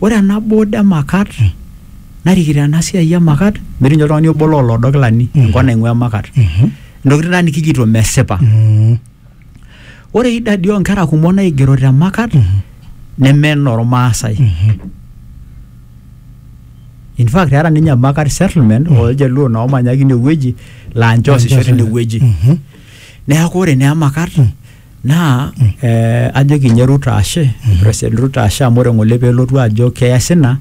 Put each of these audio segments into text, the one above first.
Ore ena board e Makat narikito ena siai e Makat metii ninye oltung'ani obo loo loodo kilani enkop naing'ua Makat. Intokitin taa nikijito mesipa. Ore idadi oo nkera kumok naigero te Makat neme inormaasai. In fact eeta ninye Makat settlement oo ljaluo naa oomanya ake ine wueji laa ninche oosisho teine wueji. Neeku ore naa Emakat naa eh, ajoki ninye Ruto ashe president Ruto ashe amu ore ng'ole pelotu ajo keas ina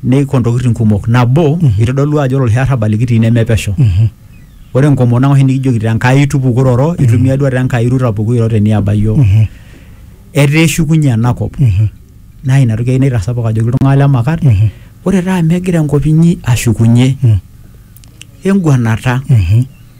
neiko ntokitin kumok nabo itodolu ajo ore oloshi arrabal likitii nemepesho ore enkomono ang oshi nikijoki te Nkai tupukoroto itumia duo te Nkai Ruto apuku iro teniaba iyiok etaa eshukunye enakop naa ina toki ai naitasapuk ajoki iltung'anak le Makat ore taa amu egira enkop inyi ashukunye enguanata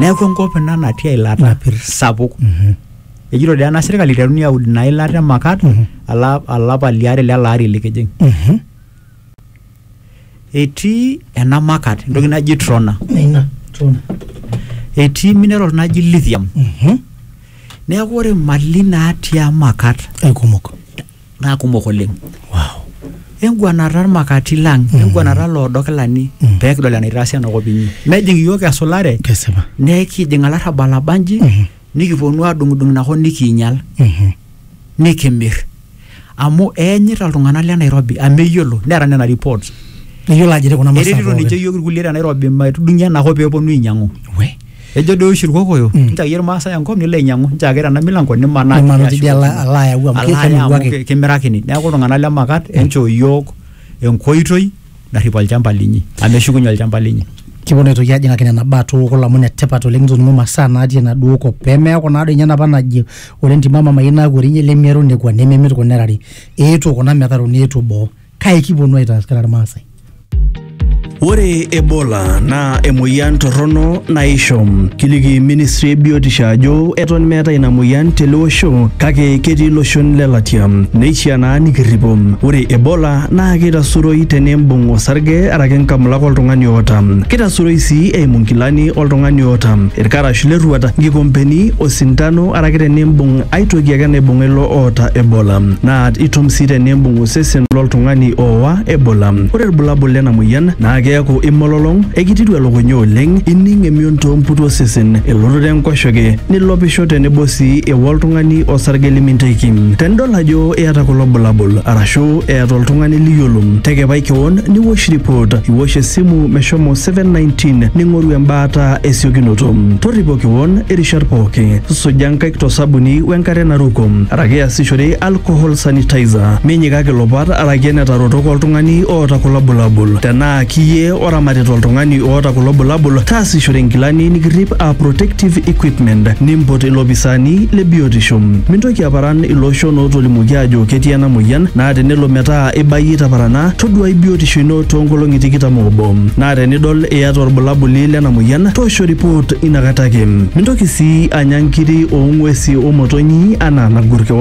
neeku enkop ina natii eilata Napir. sapuk Mhm. ejito dee ena sirkali iteruni aud ina ilata e makat Mhm. ala- alapa liare lele ari likijing Mhm. etii ena makat entoki naji trona Ina. Tuna. etii mineral naji lithium Mhm. neeku ore mali natii amakat Aikumok. naa kumok oleng wow enguanata irmakati lang enguanata loodo kilani Mm. pee kidol enaitaasi enakop inyi mejing iyiook esulare kesipa nekijing alarrabal abanji Mhm. nikiponu adung'udung inakop nikiinyal Mhm. nikimir amu eenyita iltung'anak le nairobi amu eyiolo neeta nena reports iyiolo ajo etii kuna masaa eretito ninche pookin iyiook irkulie te nairobi maitudung'ie enakop pee eponu ainyang'u we Ejo doi oshi Irkokoyo, Mm. nchaki Irmaasai enkop nilo ainyang'u, nchaki tena milango nimanaa Nimanaa tidia tidie ala- shoto. ala ayau amu Ala aya amu kemiruaki. ki- kimirakini. Neeku iltung'anak le Makat, enchoo iyiook enkoitoi narrip olchamba linyi, amu eshukunye olchamba linyi. kiponu aitoki ajing'aki nena baa tukul amu netipat oleng nitoning'o masaa natii enaduo kop pemeeku naa doi ninye enapa naji ore entima mamayieu naaku orinyi lemiaru nekua nememit kuna erari eetuo kuna metaruni eetuo boo kai kiponu aitaas kira Irmaasai. Ore Ebola naa emoyian torrono naisho. Kiliki ministry e biotisho ajo eton meeta ina moyian tele osho kake ketii iloshon le latia. Neishiaa naa nikirripo. Ore Ebola naa keitasuroi tenimbung osarge araki nkamulak oltung'ani oota. Keitasuroi sii eimu nkilani oltung'ani oota, ilkarash le rruat, nkikompeni, osintano araki tenimbung aitoki ake naibung'a ilo oota Ebola. Naa itum sii tenimbung osesen loltung'ani ooa Ebola. Ore ilbulabul lena moyian naa keaku imololong, ekititu elukunya oleng, ining emion too mputu osesen, elototo enkoshoke, nilopisho tenebo sii eua oltung'ani osarge liminteki. Tenidol ajo iyata kulo bulabul arashu eeta oltung'ani liyiolo, tekepai kewon niwosh report, iwosh esimu meshomo 719 ning'oru embaata esiokinoto. Torripo kewon irishat pooki, suja nkaik to sabuni wenkare naruko araki iasishore alcohol sanitizer minyikaki ilopat araki enetarotoka oltung'ani oota kulo bulabul tenaa kiyie oramatita oltung'ani oota kulo bulabul taasishore inkilani nikirrip a protective equipment nimpot ilopisaani le biotisho mintoki aparan ilooshon ootolimuoki aajo ketii ena moyian naa tenelo metaa ibayie itaparana toduai biotisho ino toonkolong'i tikitam oobo naa tenidol iyata orbulabuli lena moyian toosho report inakata ake mintoki sii anya nkiri oong'uesi omotonyi anaa nagur keon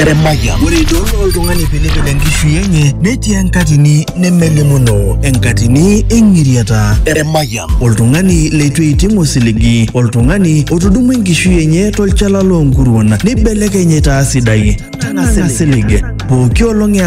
Eremaya. Ore idol oltung'ani pilipil enkishui enye netii enkatini nemelimuno, enkatini eng'iriata. Eremaya. Oltung'ani leitu eiting osiligi, oltung'ani otudumua enkishui enye tolchala loonkuruon neibelekeny aitaa sidai. Tanang'a silig. Pooki olong ela